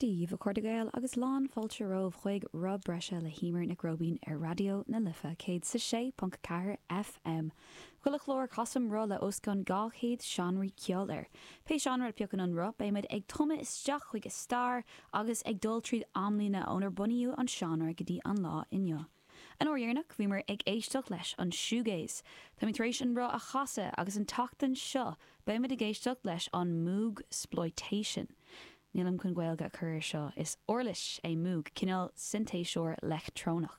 Dia daoibh a chairde Gael agus lán fáilte romhaibh chuig Roth Breise le hEímear Nic Róibín ar Raidió na Life, céad is a sé ponc a ceathair FM. Chuile chlár casaim roth le os cionn dhá chéad seánraí ceoil air. Pé seánra a phiocann an roth beidh muid ag tumadh isteach chuig a stair agus ag dul tríd amlíne ónar bunaíodh an seánra go dtí an lá inniu. An uair dheireanach bhíomar ag éisteacht leis an shoegaze. Táimid tar éis an roth a chasadh agus an tseachtain seo beimid ag éisteacht leis an moogsploitation. Nílim chun Gaeilge a chur ar seo, is uirlis é moog, cineál sintéiseoir leictreonach.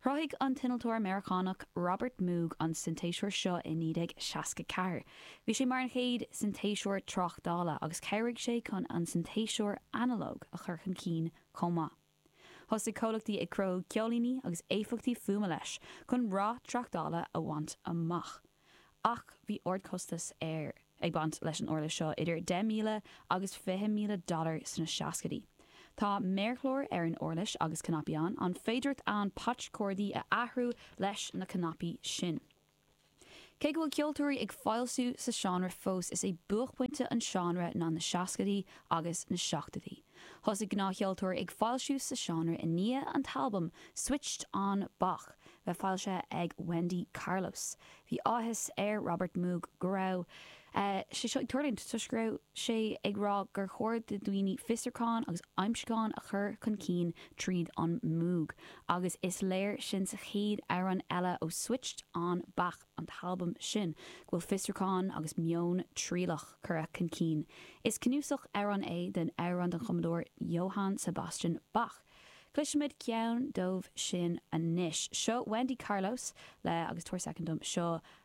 Chruthaigh an t-innealtóir Meiriceánach Robert Moog an sintéiseoir seo i 1964. Bhí sé mar an chéad sintéiseoir tráchtála agus chabhraigh sé chun an sintéiseoir analóg a chur chun cinn chomh maith. Thosaigh comhlachtaí ag cruthú ceoilíní agus éifeachtaí fuaime leis chun rath tráchtála a bhaint amach. Ach bhí ardchostas ar ag baint leis an uirlis seo, idir 10,000 agus 20,000 dollar sna seascaidí. Tá méarchlár ar an uirlis agus cnaipí ann, an féidireacht ann patch cordaí a athrú leis na cnaipí sin. Cé go bhfuil ceoltóirí ag foilsiú sa seánra fós, is é buaicphointe an seánra ná na seascaidí agus na seachtaidí. Thosaigh gnáthcheoltóirí ag foilsiú sa seánra i ndiaidh an t-albam Switched On Bach bheith foilsithe ag Wendy Carlos. Bhí áthas ar Robert Moog go raibh sé seo ag tuirlingt toisc go raibh sé ag rá gur chóir do dhaoine fiosrúcháin agus aimsiúcháin a chur chun cinn tríd an Moog, agus is léir sin sa chéad amhrán eile ó Switched On Bach, an t-albam sin, go bhfuil fiosrúcháin agus meon trialach curtha chun cinn. Is cnuasach amhrán é den amhrán den chumadóir Johann Sebastian Bach. Cloisimid ceann díobh sin anois. Seo Wendy Carlos le agus tabhair soicind dom, seo